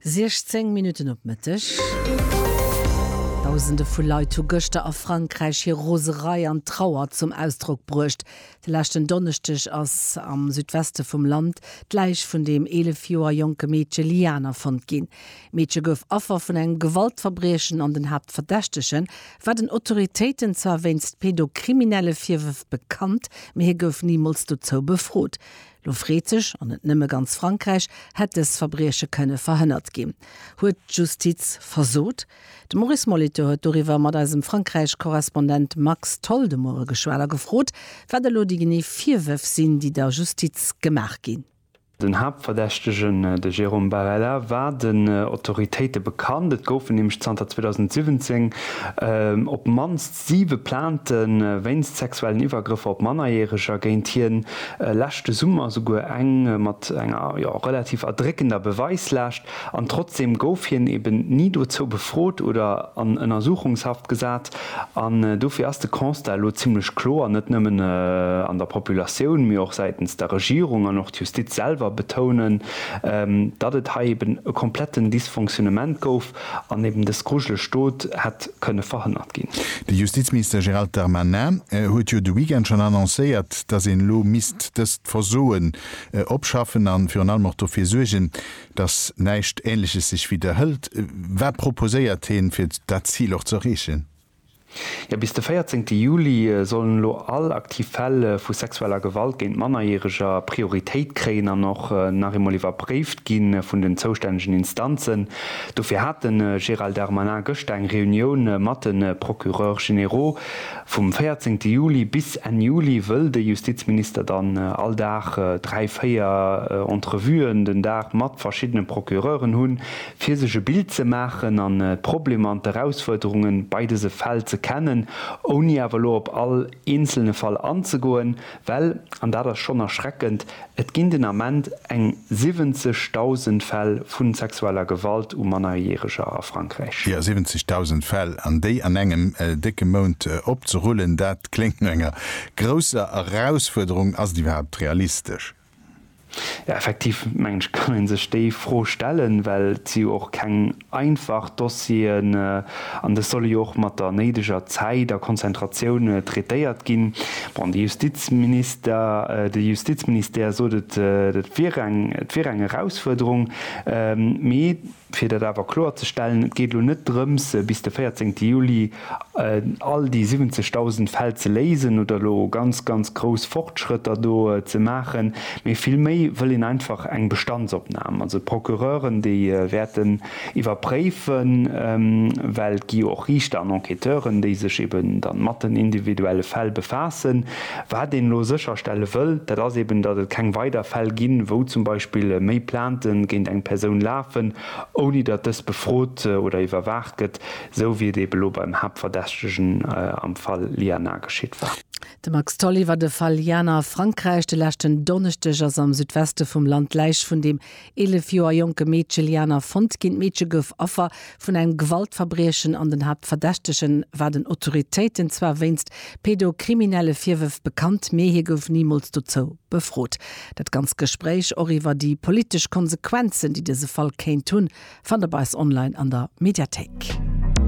16 Minutten op Mëtteg. Dausende vu Leit hu gëschter a Frankräich hir Roserei an Trauer zum Ausdrock bruecht. De leschten Donneschdeg ass am Südweste vum Land d'Läich vun dem 11 Joer jonke Meedche Liana fonnt ginn. D'Meedche gouf Affer vun engem Gewaltverbriechen an den Haaptverdächtege war den Autoritéiten zwar wéinst pedokriminelle Virwërf bekannt, mee hie gouf nimools dozou befrot. Lo freet sech, an net nëmme ganz Frankräich, Hätt dës Verbrieche kënne verhënnert ginn? Huet d'Justiz versot? De Maurice Molitor huet doriwwer mat eisem Frankräich-Korrespondent Max Tholl de Moie geschwat a gefrot, wat elo déi genee Virwërf sinn, déi der Justiz gemaach ginn. Den Haaptverdächtegen, de Jérôme Barela, war den Autoritéite bekannt. Et goufen nämlech zanter 2017 op d'mannst Siwe Plainte wéinst sexuellen Iwwergrëffer op Mannerjäreger géint hien, leschte Summer souguer eng mat enger, jo, relativ erdréckender Beweislaascht. An trotzdeem gouf hien eben ni dozou befrot oder an Ënnersuchungshaft gesat. An dofir ass de Constat elo zimmlech kloer, net nëmmen an der Populatioun, mee och säitens der Regierung an och d'Justiz selwer betounen, datt et hei eben e kompletten Dysfonctionnement gouf. An eben dës grujeleg Dot hätt kënne verhënnert ginn. De Justizminister Gérald Darmanin huet jo de Weekend schonn annoncéiert, datt een elo misst dëst Versoen opschaffen an virun allem och dofir suergen, datt näischt Ähnleches sech widderhëlt. Wat proposéiert heen, fir dat Zil och ze erreechen? Jo, bis de 14 Juli sollen elo all aktiv Fäll vu sexueller Gewalt géint Mannerjäreger Prioritéit kréien an och nach eemol iwwerpréift gi vun den zoustännegen Instanzen. Dofir hat de Gérald Darmanin gëschter eng Reunioun mat de Procureurs généraux. Vum 14 Juli bis Enn Juli wëll de Justizminister dann all Dag dräi, véier Entrevuen den Dag mat verschiddene Procureuren hunn, Fir sech e Bild ze maachen an d'Problemer an d'Erausfuerderunge bei dëse Fäll ze kennen, ouni awer elo op all eenzelne Fall anzegoen, well, an dat ass schonn erschreckend, et ginn den Ament eng 70.000 Fäll vu sexueller Gewalt u Mannerjäreger a Frankräich. Jo, 70.000 Fäll, an déi an engem décke Mount opzerullen, dat kléngt no enger grousser Erausfuerderung. Ass et iwwerhaapt realistesch? Jo, effektiv mengen ech kann ee sech déi Fro stellen, well et si jo och keng einfach Dossieren an dës solle jo och mat der néideger Zäit a Konzentratioun traitéiert ginn. Bon, de Justizminister, de Justizministère sot et wier eng, et wier eng Erausfuerderung, mee. Fir dat awer kloer ze stellen, Et geet elo net drëms, bis de 14 Juli all déi 70.000 Fäll ze léisen oder elo ganz, ganz grouss Fortschrëtter do ze maachen, mee villméi wëll een einfach eng Bestandsopnam. Also d'Procureuren, déi wäerten iwwerpréifen, well et gi jo och Riichter an Enquêteuren, déi sech eben dann mat den individuelle Fäll befaassen, Wat een elo sécherstelle wëll, dat ass eben, datt et keng weider Fäll ginn, wou zum Beispill méi Plainte géint eng Persoun lafen, ouni datt dës befrot oder iwwerwaacht gëtt, esou wéi et eben elo beim Haaptverdächtegen am Fall Liana geschitt war. De Max Tholl iwwer de Fall Liana a Frankräich, De leschten Donneschdeg ass am Südweste vum Land d'Läich vun dem Eelef Joer jonke Meedche Liana fonnt ginn. D'Meedche gouf Affer vun engem Gewaltverbriechen an den Haaptverdächtege war den Autoritéiten zwar wéinst pedokriminelle Virwërf bekannt, mee hie gouf nimools dozou befrot. Dat ganzt Gespréich, och iwwer déi politesch Konsequenzen, déi dëse Fall kéint hunn, fannt der bei eis online an der Mediathéik.